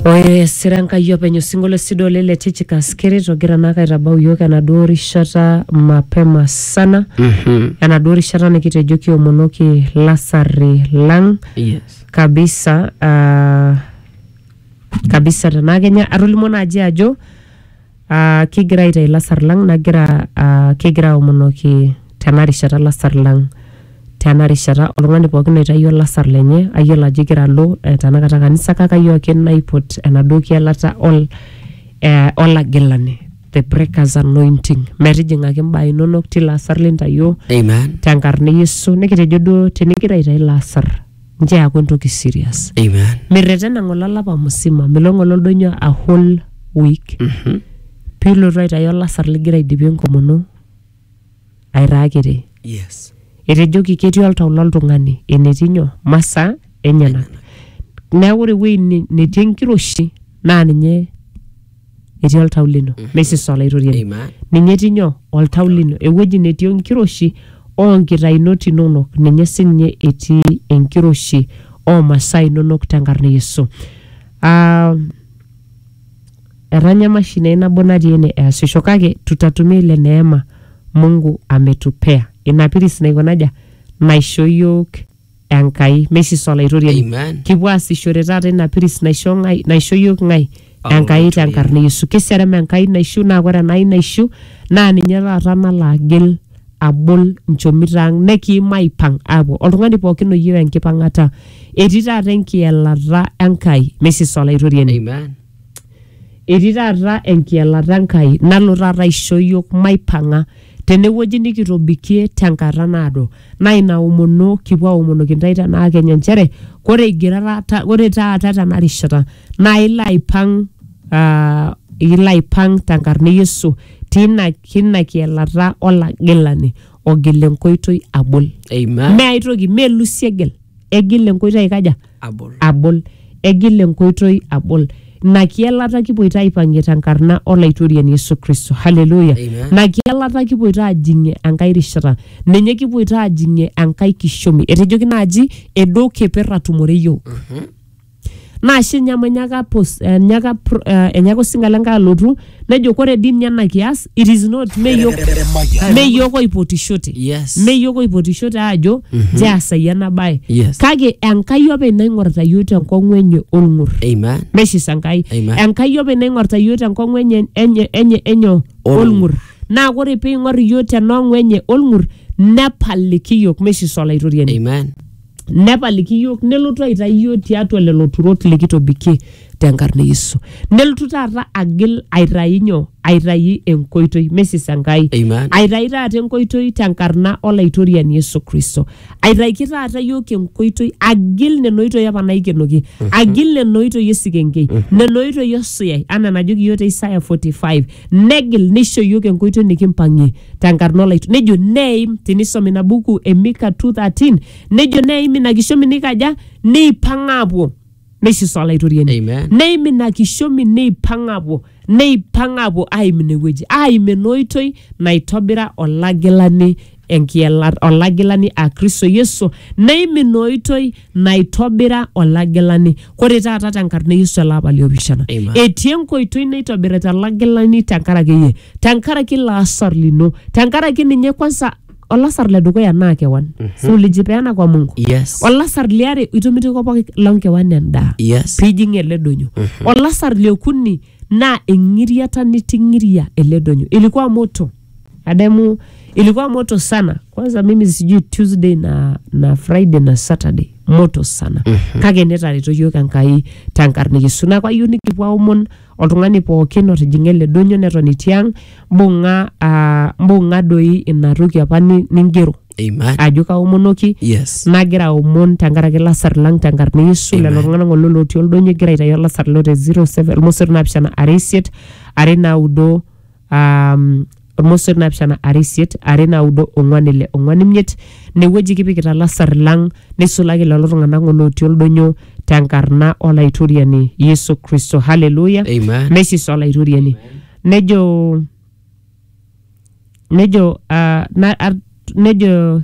Ore sira Enkai openy osinkolio sidai oleng le Tychicus keret ogira naake aitabau iyiook enaduo rishata mapema sana enaduo rishata nikitejo kiomonoki lasarri lang Yes. kabisa ah, kabisa tenaa kenya atolimuo naaji ajo Aa kigira aitayu lasar lang nagira aa kigira aomonoki tena rishata lasar lang tena rishata oltung'ani pookin oitayuo olasar lenye ayiolo ajo igira alo eh, tenakata kanisa kake ayioo ake naipot enaduo kielata ol eh, olagilani the breakers anointing metijing'aki imbaa inonok tilo asar lintayuo Amen. tenkarna e Yesu nikitejo duo tenigira aitayu ilo asar nchoo eaku entoki serious Amen. mirretena ng'ole olapa musima milo ng'ole oldonyo a whole week Mhm. pilotu aitayu olasar ligira aidipie enkomono aitaa kiti Yes. etejoki ketii oltau loltung'ani enetii nyoo masaa enyenak neeku ore ewueji ne- netii enkiroshi naa ninye etii oltau lino Mhm. meisisa olaitoriani Amen. ninye etii nyoo oltau lino ewueji netii enkiroshi oonkitainot inonok ninye sinye etii enkiroshi oomasaa inonok tenkarna e yesu Ah, etanya emashini ai nabo natii ene easisho kake tutatumia ile neema mungu ametupea ina piris naiko naja naisho iyiook Enkai. Meisis Olaitoriani. Amen. Kipuo aasishore taata ina piris naisho ng'ai, naisho iyiook ng'ai? Paulo Enkai te Olaitoriani. nkarna e Yesu. Keserem Enkai naishu naa ore Enai naishu naa ninye taata nalo agil abol nchomito ang nekiim aipang aapuo. Oltung'ani pookin oyieu enkipang'ata. Etii taata enkielata Enkai. Meisis Olaitoriani. Amen. Etii taata enkielata Enkai nalo taata aisho iyiook maipang'a tenewueji nikitobikie tenkata naado. Naa ina omono kipuo aomonoki intae tenaa kenya nchere ore igira taata ore taata tena rishata naa ilo aipang' aa ilo aipang' tenkarna e Yesu tina tina kielata olagilani ogil enkoitoi abol. Amen. Mme ae toki, mme Lucy egil, egil enkoitoi aikaja? abol. abol. Egil enkoitoi abol. Ina kielata kipoito aipang'ie tenkarna Olaitoriani Yesu Kristo. Haleluya. Amen. Ina kielata kipoito aajing'ie enkae rishata. Ninye kipoito aajing'ie enkae kishomi. Etejoki naaji edo keper atumore iyiook. Naa ashe ninye amu enyaaka pos- enyaaka pro- eh, enyaaka osinga le Nkai alotu nejo kore dii ninye ena kias it is not meyiok meyiok oipotishote Yes. meyiok oipotishote aajo njeasai ena bae Yes. kake enkai openy naing'orita yiok tenkong'u enye olng'ur Amen. meshisa enkai Amen. enkai openy naing'orita yiok tenkong'u enye enye enye enyo Olng'ur. olng'ur naa kore peing'or yiok tenong'u enye olng'ur nepaliki yiok meshisa olaitoriani Amen. nepaliki iyiook nelotu aitayu iyiook tiatua lelo turot likitobikie tenkarna e Yesu. Nelotu taata agil aitayu nyoo? Aitayu enkoitoi, mesis Enkai. Amen. Aitayu taata enkoitoi tenkarna olaitoriani Yesu Kristo. Aitaiki taata iyiook enkoitoi, agil nena oitoi apa naikenoki, agil nena oitoi esikenkei, nena oitoi osuyai, anaa enajoki iyiook te Isaya 45, negil neisho iyiook enkoitoi nikimpang'ie. tenkarna olaitu nejo neim tinisom ina buku e Mika 2:13 nejo neim ina kishomi nikaja neipang aapuo neisisa olaitoriani Amen. neim ina kishomi neipang aapuo neipang aapuo aim ine wueji aim ena oitoi naitobira olagilani enkiela olagilani a Kristo Yesu neim ina oitoi naitobira olagilani kore taata tenkarna e yesu ele apa liopishana Amen. etii enkoitoi naitobirita olagilani tenkaraki iyie tenkaraki ilo asar lino tenkaraki ninye kwanza olasar le dukuya naa kewan si ulijipeana kwa mungu Yes. olasar liare itomitiko pooki lonkewan endaa Yes. pijing ele donyo olasar liokuni naa eng'iriata niting'iria ele donyo ilikuwa moto Adamu ilikuwa moto sana. Kwanza mimi sijui Tuesday na, na Friday na Saturday moto sana mm-hmm. kake netareto yiok Enkai tenkarna Yesu neeku ayieu nikipuo aomon oltung'ani pookin otijing'a ele donyo neton etii ang mbung'a ah, mbung'a doi ina toki apa ni- ningero Amen. ajo kaomonoki Yes. nagira aomon tenkaraki lasar lang tenkarna Yesu lelo tung'anak ng'ole lotii oldonyo egira aitayu olasar lo te 07 irmosor naapishana are isiet are naudo um, ormosor naapishana are isiet are naudo ong'uan ile ong'uan imiet inewueji kipikita lasar lang neisulaki lelo tung'anak ng'ole otii oldonyo tenkarna olaitoriani yesu kristo haleluya Amen. mesis olaitoriani nejo nejo uh, na, ar, nejo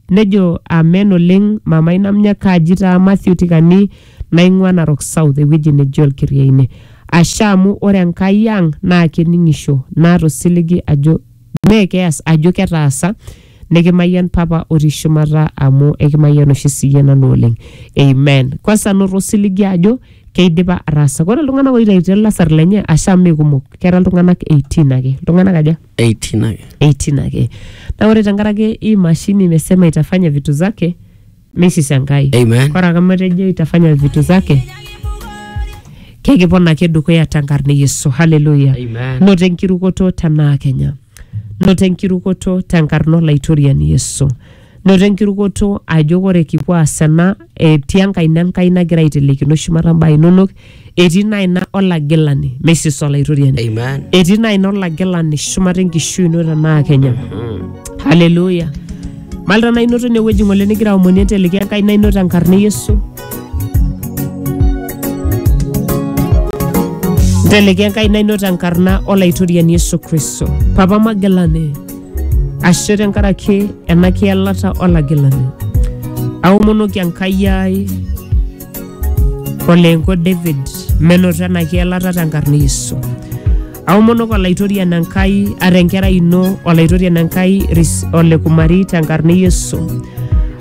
Nejo amen oleng mamai namnya kaji taa Matthew Tikani naing'ua Narok South ewueji neji Olkiriaine. Ashe amu ore Enkai ang naa kening'isho naata osiligi ajo mee keas ajo ketaasa nikimayian papa otii shumata amu ekimayian oshi siyie nanu oleng. Amen. Kwanza anoto osiligi ajo keidipa ataasa. Ore iltung'anak oitaitie ilasar lenye ashe amu mee kumok kera iltung'anak 18 ake. Iltung'anak aja? 18 ake 18 ake na ore tenkaraki hii mashini imesema itafanya vitu zake misishangai Amen. kora kama etejo itafanya vitu zake kekipona ake dukuya tenkarna e yesu haleluya Amen. noto enkirukoto tenaa kenya noto enkirukoto tenkarna olaitoriani yesu Noto enkirukoto ajo ore kipuo aas ena etii enkaina Enkai nagira aitelekino shumata mbaa inonok, etii ina aina olagilani, Mrs Olaitoriani. Amen. Etii ina aina olagilani shumata enkishui ino tenaa Kenya. Haleluya. Malta naa inoto inewueji ng'ole nigira aomonie enteleki enkaina ino tenkarna e Yesu. Nteleki enkaina ino tenkarna Olaitoriani Yesu Kristo. Papa Magilani, ashe tenkaraki ena kielata olagilani. Aomonoki Enkai ai oleenko David menoto ena kielata tenkarna Yesu. Aomonok olaitorian Enkai ata enkerai ino olaitorian Enkai Ris- ole Kumari tenkarna Yesu.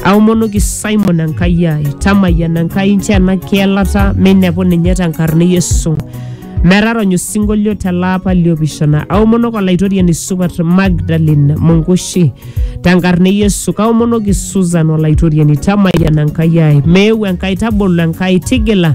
Aomonoki Simon Enkai ai tamayiana Enkai nchoo ena kielata meinepu ninye tenkarna Yesu. Metarony osinkolio tele apa liopishana. Aomonok olaitoriani supat Magdalene Mungushi tenkarna e Yesu. Kaomonoki Susan olaitoriani tamayiana Enkai ai. Meeu Enkai tabolo Enkai tigila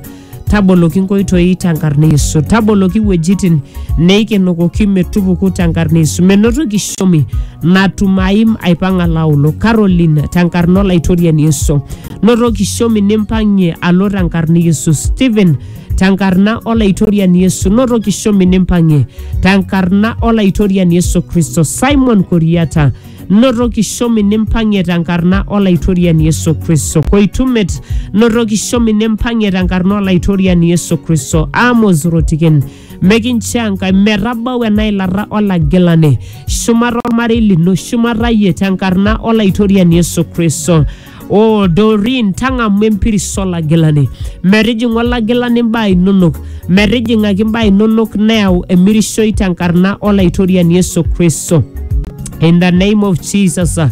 taboloki nkoitoi tenkarna e Yesu. Taboloki wuejitin neikenokoki metupuku tenkarna e Yesu. Menoto kishomi natum aim aipang'a laolo. Caroline tenkarna olaitoriani Yesu. Noto kishomi nimpang'ie alo tenkarna e Yesu. Stephen tenkarna olaitoriani Yesu noto kishomi nimpang'ie tenkarna olaitoriani Yesu Kristo Simon Koriata noto kishomi nimpang'ie tenkarna olaitoriani Yesu Kristo Koitumet noto kishomi nimpang'ie tenkarna olaitoriani Yesu Kristo Amos Rotiken mekincho Enkai metabau ena ilata olagilani shumata ormarei lino shumata iyie tenkarna olaitoriani Yesu Kristo o Doreen tang'amu empiris olagilani metijing'u olagilani imbaa inonok metijing'aki imbaa inonok neyau emirishoi tenkarna olaitoriani Yesu Kristo in the name of Jesus uh,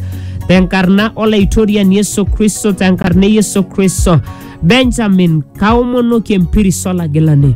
tenkarna olaitoriani Yesu Kristo tenkarna e Yesu Kristo Benjamin kaomonoki empiris olagilani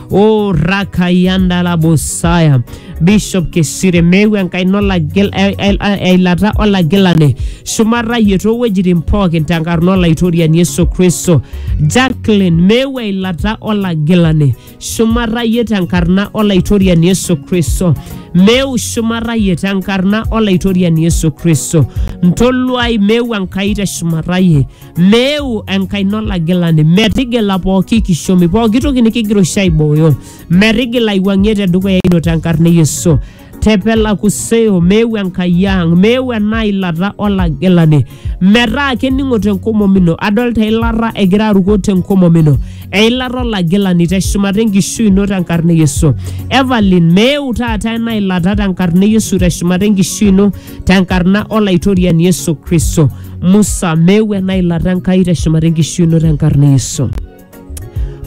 o rakayanda la bosaya bishop keshire mewe enkai nolagil eilata olagilane shumata yie toowuejitin pookin tenkarna olaitoriani yesu kristo jacklin mewe eilata olagilane shumata yie tenkarna olaitoriani yesu kristo meu shumata yie tenkarna olaitoriani yesu kristo ntoluai meu enkai te shumata yie meeu enkaina olagilani metigila pooki kishomi pooki toki nikigira oshi aibooyo metigila aiwuang'ie tedukuya ino tenkarna e yesu tepela kuseo meeu enkai ang meeu ena ilata olagilani metaa kening'o tenkomom ino adolta eilata egira aruko tenkomom ino eilata olagilani teshumata enkishui ino tenkarna e yesu evelyn meeu taata ena ilata tenkarna e yesu teshumata enkishui ino tenkarna olaitoriani yesu kristo musa meeu ena ilata enkai teshumata enkishui ino tenkarna e yesu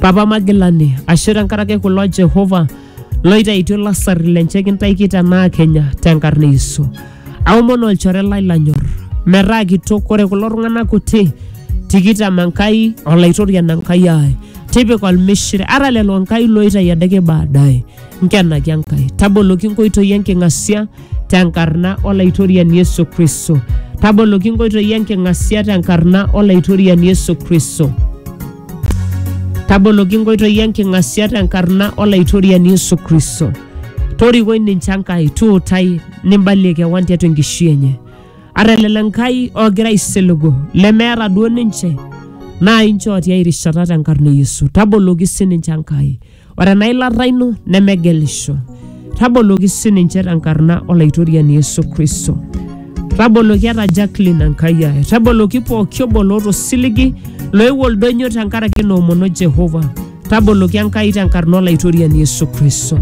papa magilani ashe tenkaraki kulo jehova loitaitio lasarri lenche kintaiki tenaa kenya tenkarna e yesu aomon olchore lai lanyor metaa kitok ore kulo tung'anak kuti tikitam enkai olaitorian enkai ai tipika olmishire ara lelo enkai loitai adake baadaye nkenaki enkai taboloki nkoitoi enking'asia tenkarna olaitoriani Yesu Kristo. Taboloki inkoitoi enking'asia tenkarna olaitoriani Yesu Kristo. Taboloki inkoitoi enking'asia tenkarna olaitoriani Yesu Kristo. Torikoi ninche Enkai, tuutai nimbalie kewan tiatua enkishui enye. Ata lelo Enkai oogira aisiligu lemeeta duo ninche naa inchoo tiai rishata tenkarna e Yesu. Taboloki sininche Enkai. Ore ena ilata ino nemegelisho. Taboloki sininche tenkarna Olaitoriani Yesu Kristo. Taboloki ata Jacqueline Enkai ai. Taboloki pooki obo loota osiligi loewuo oldonyo tenkaraki ina omono Jehova. Taboloki Enkai tenkarna Olaitoriani Yesu Kristo.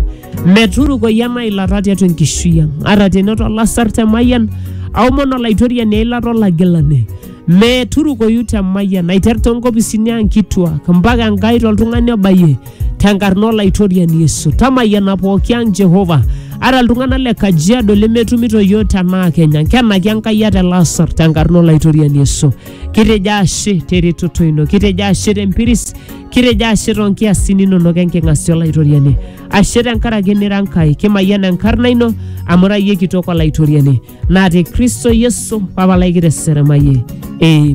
Meturukoi ena ilata tiatua enkishui ang. Ata tenoto olasar temayian, aomon Olaitoriani eilata olagilani. meturukoyu te mayian aiter too nkopisini ang kituak mpaka enkai toltung'ani obayie tenkarna olaitoriani yesu tamayiana pooki ang jehova ara iltung'anak le kajiado lemetumito yiok tenaa kenya nkenaki enkai ate lasar tenkarna olaitoriani yesu kitejo ashe teretoto ino kitejo ashe tempiris kitejo ashe toonkiasin inonok enking'asia olaitoriani ashe tenkaraki nira Nkai, kimayian enkarna ino amu ira iyie kitok Olaitoriani, naa te Kristo Yesu Papa lai kiteseremayie. Amen.